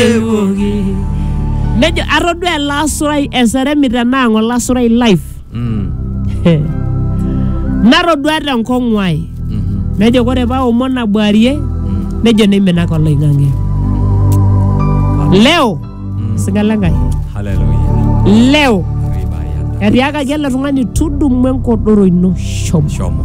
ewoki nejo atodua ele asurai eseremi tenaang olasurai live Mm. natodua tenkong'u ai Mhm. nejo kore paa omon abuarie Mm. nejo neiminaka oloing'ang'e leo Mm. singala enkai Hallelujah. leo Ribayanda. etiakaki ele tung'ani tudumu enkodoro ino shomo Shomo.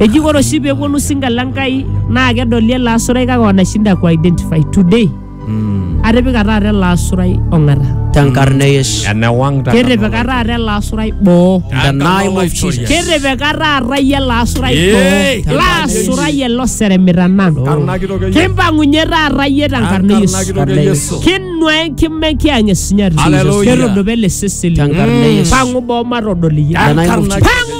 Eji ore oshi peponu singa le Nkai naa kedoli ele asurai kake wanashinda ku identify today. Atipika taata ele asurai ong'ata. Tenkarna e Yesu. Enewang taata. Ketipika taata ele asurai boo. In the name of Jesus. Ketipika taata iyie ele asurai Yee. boo. Ele asurai ele oseremita nanu. Karna kitoki ake. Kimpang'unye taata iyie tenkarna e Karna Yesu. kitoki ake Yesu. Kinua enkima enkiang' esunyati. Hallelujah. Ketudupa ele seseni. Tenkarna e Yesu. Pang'u boo matodol iyie. In the name of Jesus. Pang'u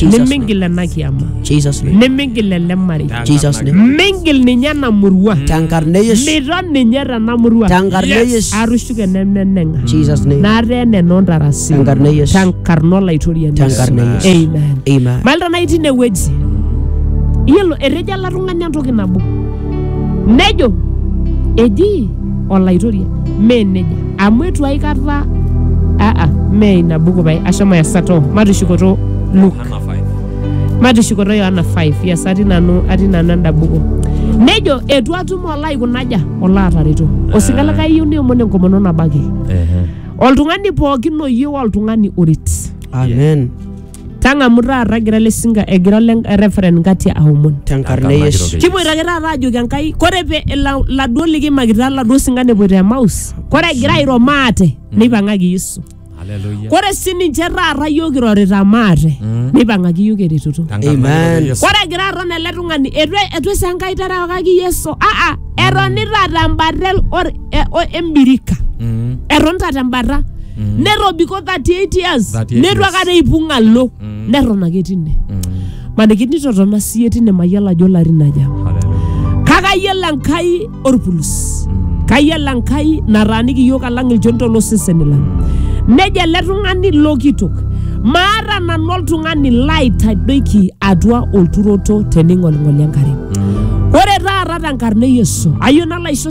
nimingil ena kiama Jesus name. nimingil ele marei Jesus name. mingil ninye ena murua Tenkarna e Yesu. mira ninye tena murua Tenkarna e Yesu. atushuke nemeneng'a Jesus name. nataa eneno ntarasi Tenkarna e Yesu. tenkarna olaitoriani Tenkarna e Yesu. Amen. Amen. malta nai tine wueji yiolo etejo ele tung'ani entoki nabo nejo eji olaitoria mee neja amu etu aikata aa mee ina buku pae ashomo yasato matushukoto Luke Hana 5. matushukoto yohana 5 yes atii nanu atii nanu enda buku nejo etu atum olo aikunaja olo atareto osika likae iyieu niomon enkomono nabaki Ehe. oltung'ani pookin oyieu oltung'ani oret Amen. Tang'amu taata egira ele sinka egira ole referent Ngatia aomon. tenkarna e yesu Kipoito ake taata aajoki Enkai, kore pe ila- laduo likiimakita laduo sinkan epoito Emaus, kore egira airo maate, neipang'aki Yesu. Haleluya. Kore sininche taata yiok kirorita maate, neipang'aki yiok eretoto. Tenkarna Amen. e Yesu. Kore egira aton ele tung'ani, etu etu esaa Enkai terewakaki Yesu, aa etonita tembata el- or- e- o- embirika Mm. eton taata embata Mm. nerobiko 38 years 38 netu years. akata eipung alo Mm. neton ake tine Mm. maniki nitotona siye tine mayiolo ajo larin aja Hallelujah. kake ayiolo enkai orpulus Mm. kayiolo enkai nataaniki iyiok alang ilchonito loseseni lang nejo ele tung'ani lokitok maata nanu oltung'ani laitadoiki atua olturoto tening'oling'oli enkare ore taata tenkarna e yesu ayieu nalo aisho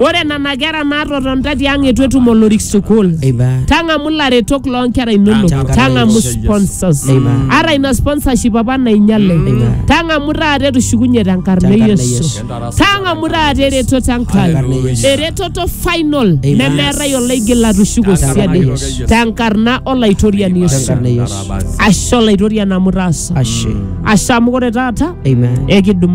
Ore nena kera naatotonita tiang' eitu etum olorik sukuul. Eiba. Tang'amu ilaretok loo nkera inonok. Tang'amu. Tang'amu sponsors. Eiba. Ata ina sponsorship apa nainyale. Eiba. Tang'amu taata etushukunye tenkarna e Tenkarna e Yesu. Yesu. Tang'amu taata eretoto Tenkarna e Enkai. Yesu. Eretoto final Eiba. nemeetai olaigil atushuko Tenkarna siadi. e Yesu. Tenkarna olaitoriani Yesu. Tenkarna e Yesu. Ashe olaitoriani amu itaasa. Ashe. Ashe amu ore taata Amen. ekidumu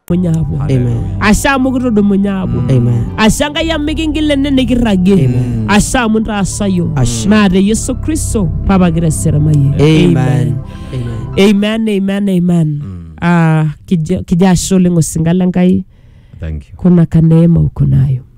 Dumunye aapuo. Amen. Ashe amu kitudumunye aapuo. Amen. Ashe Enkai amu mikingil ene nikirragie. Amen. Ashe amu intaasayo. Ashe. Naa te Yesu Kristo papa kira eserimayie. Amen. Amen. Amen, amen, amen. Ah, kijo kijo ashe oleng osinka le Nkai Thank you. kuna kaneema uko nayo.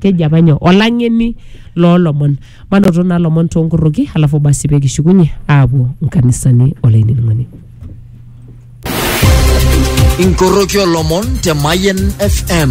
keji apa nyoo olang'eni loolomon manoto naa lomon toonkorroki alafu basi pee kishukunye aapuo nkanisani olainining'oni. inkoroki olomon te Mayen FM.